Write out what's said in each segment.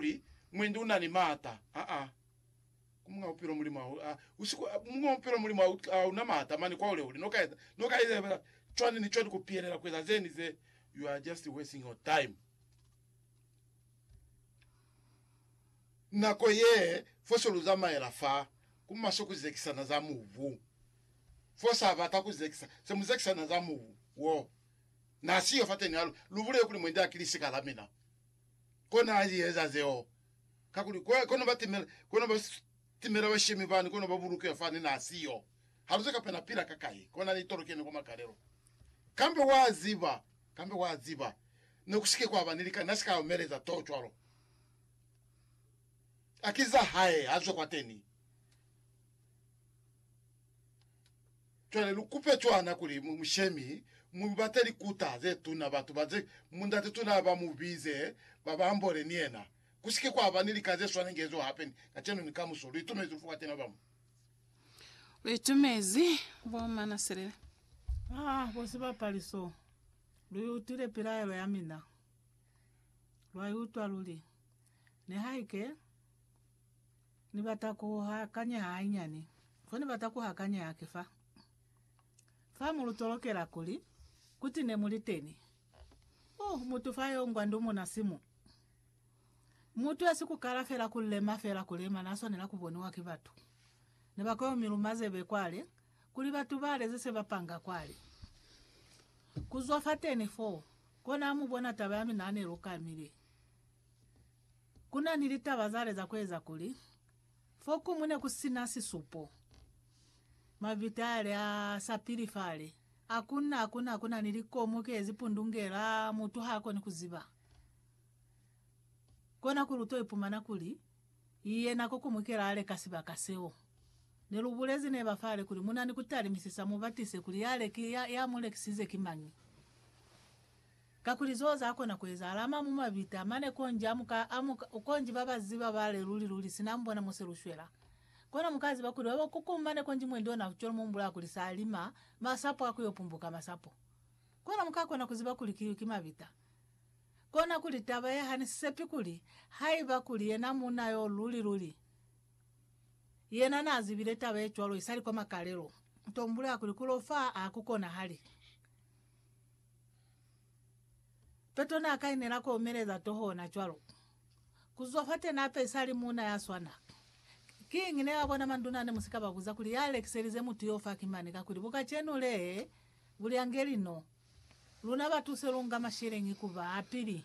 kuli mwendi una ni maata. Aa. Ku Muñ'a Bupilo Mulimu ha u, a, u si ku, Muñ'a Bupilo Mulimu ha u, a una maata mane kwa hulehule. No ka eza, no ka eza fela cwani ni cwani ku pihelela ku eza ze ni ze. You are just wasting your time. Nako ye, fo se lu zamaela fa, ku maswe ku zekisa na za mubu. Fo sa bata ku zekisa, se mu zekisa na za mubu wo. Na si yo fateni ha lu, lu bulele kuli mwendi ha ki lisika la mina. Kona a zieza zeo, kakuli kwa kono ba timela, kono ba timela bashemi bani, kono ba bulukiwa fani na siyo. Haluze kape na pila ka kai, kona ni tolokeni kwa makalelo. Kambe wa ziba, kambe wa ziba, ne ku sike kwa ba ni lika, na si ka omeleza too cwalo. A ki za hae, a zwe kwateni. Cwale lu kupe cwana kuli mu mushemi mu lu bate likuta ze tuna, batu ba ze mundate tuna ba mu bize, ba ba ambole ni yena. Ku si ke kwa ba ni lika ze swana inge ezo hape ni kacenu ni kamuso. Lu itumezi lufu kwa tena ba mu. Lu itumezi bo mana selele. Ah, bo sibapali so. Lu i utwile pilaelo ya mina. Lwa i utwa luli. Nihaike. Ni bata ku hakanya hainyani. Ko ni bata ku hakanya haki fa. Fa mu lu tolokela kuli, kuti ne mu li teni. Uh, mutu fa yo ngwa ndumuna simu. Mutu esi ku kala fela ku lema, fela ku lema, na swanela ku boniwa ki batu. Ne ba koyo miluma zebe kwale, kuli batu bale ze se ba panga kwale. Ku zwa fateni foo, kona a mu bona taba ya mina ne lu kamile. Ku na ni litaba za leza ku eza kuli, fo kuñwi ne ku si na sisupo. Mavita a li a sa pili fale. Hakunna, hakunna ku na ni likomu ki ezi pundungela, mutu ha koni ku ziba. Kona kuli u to ipumana kuli, yena ko kuñwi kela a leka sibaka seo. Ne lu bulezi neba fale kuli, Mu na ni ku talimisisa, mu batise kuli ya, ya mu lekisize ki mañi. Kakuli zeo za kona ku ezahala ama mu mabita mane konji a muka a muka konji ba ba ziba ba le luli luli sina mbona muse lu shwela. Kono muka ziba kuli ba ba kuku mane konji mwendi ona ku cwela mumbula kuli sa lima masapo a ku yo pumbuka masapo. Kono muka kona ku ziba kuli kiyu ki mabita. Kona kuli taba ye hane sisepi kuli haiba kuli yena munna yo luli luli yena na zibile taba ye cwalo isali kwa makalelo, to mbula kuli ku lo fa a ku konahali. Peto n'a kainela k'o omeleza toho ona cwalo. Ku zwa f'ate n'a pesa a li muuna ya swana. Kiñi ne ba bona manduna ne mu si ka ba buza kuli ya lekiselize mutu y'o fa ki mani kakuli bukacenu le bu li angeli no? Luna batu se lu nga masheleñi ku ba a pili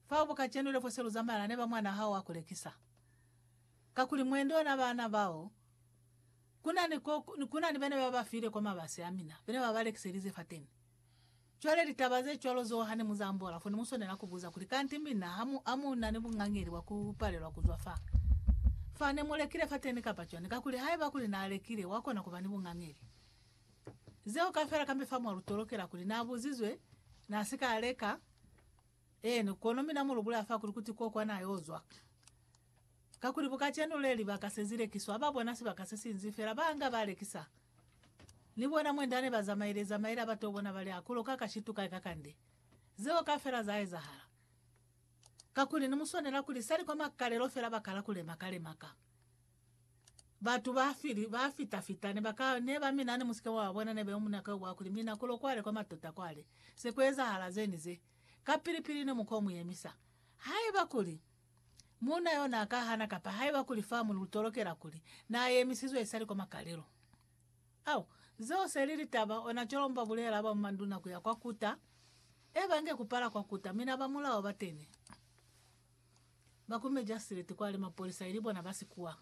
fao bukacenu le fo se lu zamaya ne ba mwan'a hao a ku lekisa. Kakuli mwendo ona baana bao. Kuna ni, kuna ni bene ba ba file kwa mabasi amina, bene ba ba lekiselize fateni. Cwale litaba ze cwalo zeo hane mu za ambola, fo ne mu swanela ku buza kuli, Kanti mina ha mu, ha mu na ni bungangeli bwa ku palelwa ku zwa fa, fa ne mu lekile fateni kapa cwani? Kakuli haiba kuli na lekile, wa kona ku ba ni bungangeli. Zeo kaufela kambe fa mwa lu tolokela kuli, Na buzizwe, na si ka leka. Eeni, kono mina mu lu bulaya fa kuli, Kuti ko kwa na yo zwa. Kakuli bu kacenu le libaka se zi lekiswa, ba bona sibaka se sinzi fela, ba nga ba lekisa. Ni bona mwenda ne ba zamaile zamaile ha ba to bona ba li, A ku loka ka shitu kai kakande. Zeo kafela za ezahala. Kakuli ni mu swanela kuli sali kwa makalelo fela ba kala ku lemaka lemaka. Batu ba fili, ba fita fita, ne ba ka, ne ba mina ne mu si ke mwa ba bona, ne be mu naka yo bwa kuli, Mina ku lo kwale kwa matota kwale. Se ku ezahala ze ni ze. Kapili pili ne mu ko mu yemisa. Haiba kuli, Muuna yo n'a ka hana kapa haiba kuli fa mu lu tolokela kuli n'a yemisizwe isali kwa makalelo. Au, zeo se li litaba, ona cwalo ba bulela ba manduna ku ya kwa kuta, e ba nge ku pala kwa kuta, mi na ba mulao ba tene, ba ku mejasileti kwale, mapolisa ili bona ba sikuwa.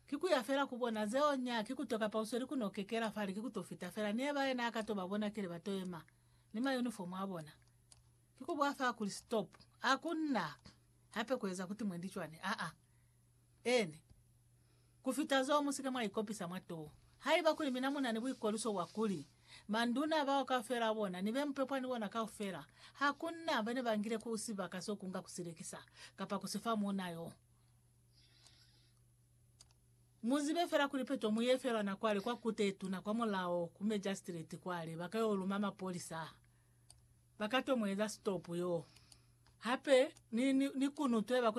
Ki ku ya fela ku bona zeo, nya ki ku to kapa u sweli ku no kekela fale, ki ku to fita fela. Ni eba yena a ka to ba bona kile ba to yema ni ma uniform a bona. Ki ku bwa fa kuli stop. A ku na hape ku eza kuti mwendi cwani. Aa. Eeni. Ku fita zo, mu si ke mwa ikopisa mwa to. Haiba kuli mina mu na ni buikoliso bwa kuli, Manduna bao kaufela a bona, ni be mupepwa ni bona kaufela, ha ku na bene ba ngile ku sibaka so kunga ku si lekisa, kapa ku si fa muuna yo. Mu zibe fela kuli peto mu ye felwa na kwale kwa Kute ye Tuna kwa mulao, ku Magistrate kwale, ba ka yo luma mapolisa. ba ka to mu eza sitopu yoo. Hape ni, ni, ni kunutweba ku